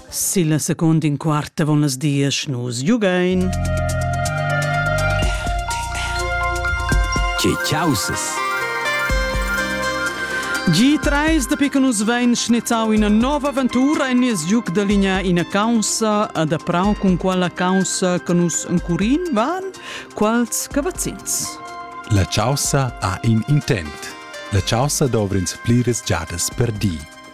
Silla secunda in quart avon las diesch nus giugain. Che causes! G3 da pica nus vain schnettau ina nova aventura en nies giuc da linea ina caussa adaprau cun quella caussa che nus encurin van quals cavazzins. La caussa ha in intent. La caussa dovrins pliras giadas per di.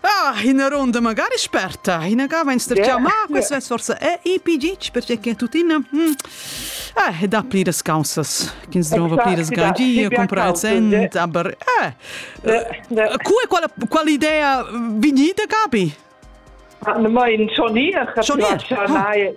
Ah, ina ronda magari sperta. Ina gava in sterciamà, yeah. questo è forse è IPG, perché che tuttina... Hm, eh, da pliras causas. Chi trova pliras gagie, compra cent, aber... Eh, cu è qual, qual idea vignita capi? Ah, ne mai in Johnny, Johnny.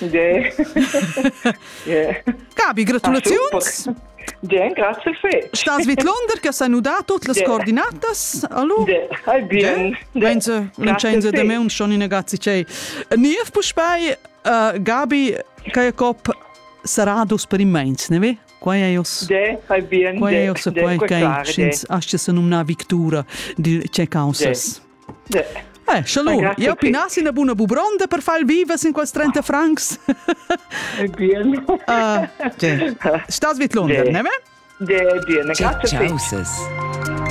Yeah. yeah. Gabi, gratulaziuns! Bien, grazie fetg. Stas vidlonder che sei nuda tutte le coordinatas? Allora? Hai bien. Mense, non c'è in de me un schon in ragazzi c'è. Niev puspei uh, Gabi Kajkop Saradus per immens, ne ve? Quai è jos. De, fai bien. Quai è jos quai che ins asce se numna victura di ce causas. Eh, scha lu, jau pinassi ina buna bubronda per far vivas in quels 30 francs. Ah, okay. Stas vid London, ne? Ne, bien, grazie. Ciao,